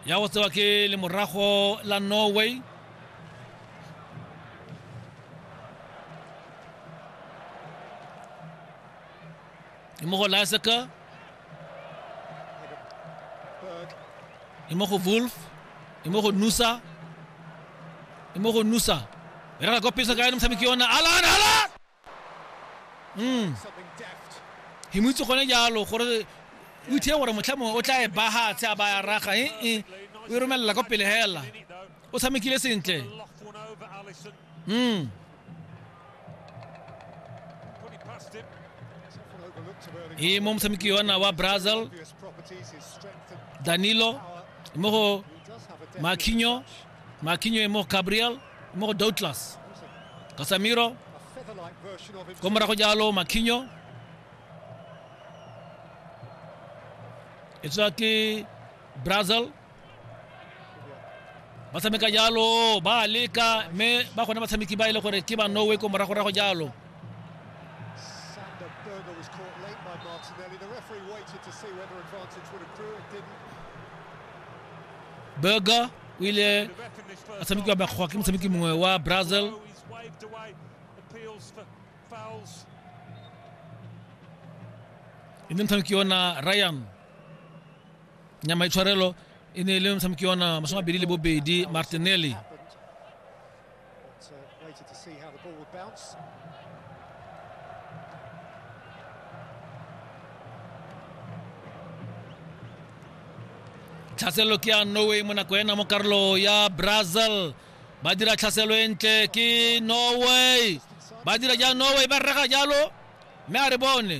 ya go tsewa ke lemorago la norway mo go laseka mo go wolf mo go nusa mo go nusa e reka kopisa ka ene motshameki yona alan alan Mm. He mo itse gone jalo gore o ithe gore motlha mongwe o tla e bahatshe a baya raga e e o e romelela kwa pele hela o tshamekile sentle mm e mo motshameki yona wa brazil danilo mo go makinyo makinyo e mo gabriel mo go douglas kasamiro ko morago jalo makhinyo e tswa ke brazil ba tshameka jalo ba leka mme ba gone batshameki ba e le gore ke ba norway ko moragorago jalo burger o ile a tshamekiwa bakgoa ke motshameki mongwe wa brazil e ne motshameki yona ryan nyama itshwarelo e ne e le motshameki yona masome abedi le bobedi martinelli But uh, waited to see how the ball would bounce. tlhaselo ke ya norway mo nako ena mo karolo ya brazil ba dira tlhaselo e ntle ke norway ba dira ja norway ba rega jalo mme a re bone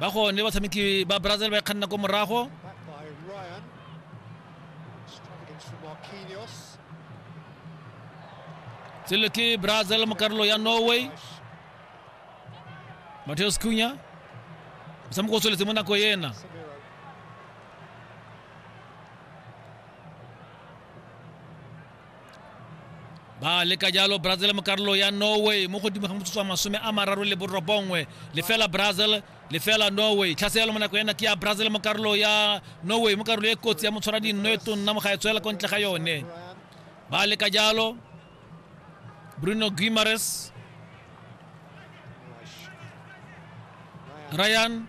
ba gone batshameki ba brazil ba e kganna ko morago selo ke brazil mo karolo ya norway mateos cunya motshameko o tsweletse mo nako ena ba leka jalo brazil mo karolo ya norway mo godimo ga motsotso wa masome a mararo le borobongwe lefela brazil lefela norway tlhaseelo mo nako ena ke ya brazil mo karolo ya norway mo karolo e kotsi ya motshwara dinno e tonna mo ga e tswela ko ntle ga yone ba leka jalo bruno guimares ryan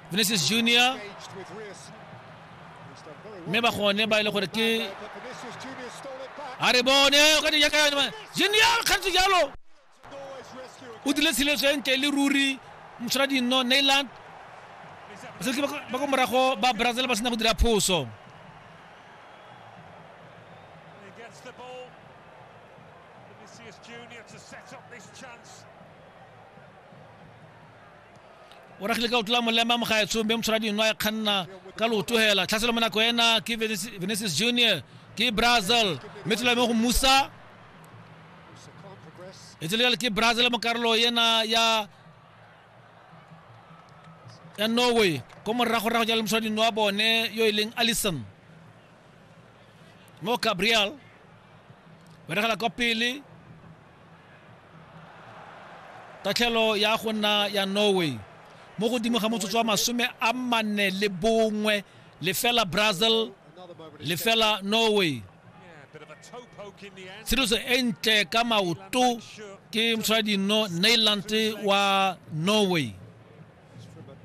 Vinicius Junior mme ba gone ba e le gore ke a re bone o ka di yaka yone Junior kgantse jalo o dile tshiletso e ntle le ruri motshwara dinno Neyland basetsi ba ko morago ba Brazil ba sena go dira phoso Vinicius Junior to set up this chance o ragile ka o tlola molema mogaetshong be motshwara dino a kganna ka lootogela tlhaselo mo nako ena ke venesis junior ke brazil mme tlola mo go musa e tsele jale ke brazil mo karolo ena ya ya norway ko morago rago jale moswa dino wa bone yo e leng allison mo gabriel ba regela kwa pele tatlhelo ya go nna ya norway mo godimo ga motsotso wa masome a manne le bongwe lefela brazil lefela norway tsheditso e ntle ka maoto ke motshwadi no nailand wa norway